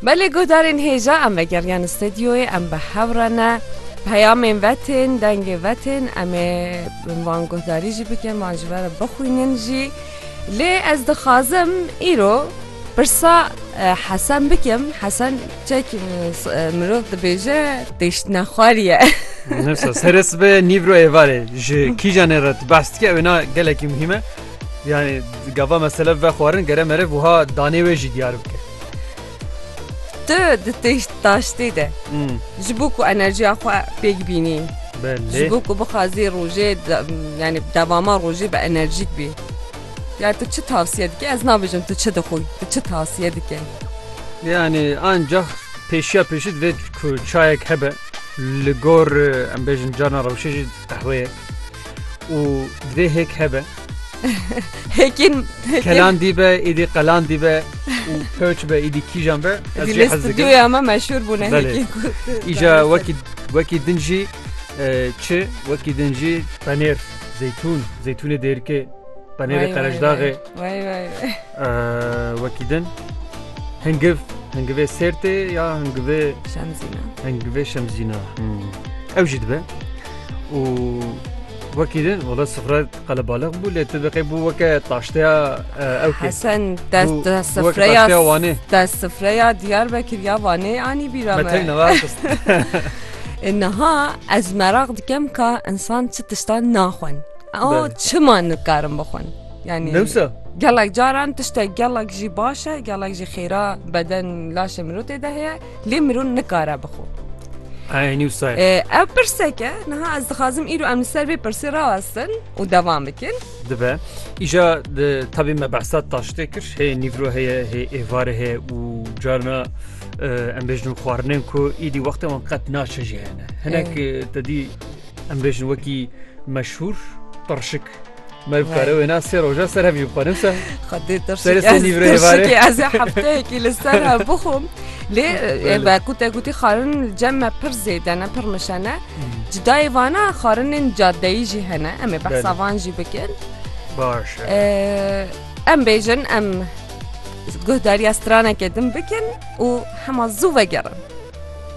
Belê guhdarên hêja em vegeriyan stedyoyê em bi hev re ne peyamên ve tên dengê ve tên em ê van guhdarî jî bikin van ji ve re bixwînin jî lê ez dixwazim îro pirsa hesen bikim hesen çek mirov dibêje têştine xwariye Serê sibê nîvro êvarê ji kîjanê re bes dike wêna gelekî muhîme Yani gava mesele ve xwarin gere mere buha danê wê jî diyar bike. Tu di têş taştê de ji bo ku enerjiya xwe pêk bînî ji bo ku bixwazî rojê yani devama rojê bi enerjîk bî. Ya tu çi tavsiye dike ez nabêjim tu çi dixwî tu çi tavsiye dike. Yani ancak pêşiya pêşî divê ku çayek hebe li gor em bêjin carna rewşê jî qehweyek. û divê hêk hebe. Hêkên kelan dîbe êdî qelan dîbe û pewç be êdî kîjan be stûdyoya me meşhur bûne îja wekî wekî din jî çi wekî din jî penêr zeytûn zeytûnê dêrikê penêrê qerejdağê Wey wey wey. Wekî din hingiv hingivê sêrtê ya hingivê Şemzîna. hingivê şemzîna ew jî dibe û wekî din wala sifre qele baliq bû lê tu biqê bû weke taşteya eh, ew kê Hesen dest Bu- dest bu wek sifreya taşteya Wanê. dest sifreya Diyarbekir ya Wanê anî bîra me me. teyna ver xist. E, Niha ez meraq dikem ka insan çi tiştan naxwin. O Bele. çima nikarin bixwin? Yani Newsa. Gelek caran tişte gelek jî baş e, gelek jî xêra beden laşê mirov tê de heye, lê mirov nikare bixwe. Ay Newsa. Ev pirseke, niha ez dixwazim îro em li ser vê pirsê rawestin û devam bikin. Dibe. Îja tabî me behsa taştê kir, hê nîvro heye, hê êvarê heye û carna em bêjin xwarinên ku îdî wextê wan qet naçe jî hene. Hinek te dî em bêjin wekî meşhûr pirşik Me bi kare wêna sê roja ser hevî bixwenim se. Xwedê tirşikî ez ê hefteyekî li ser hev bixwim. Lê ebe ku te gotî xarin li cem me pir zêde ne pir mişene. Cidayê vana xarinên cadeyî jî hene em ê behsa van jî bikin. Baş. Em bêjin em guhdariya stranekê din bikin û hema zû vegerin.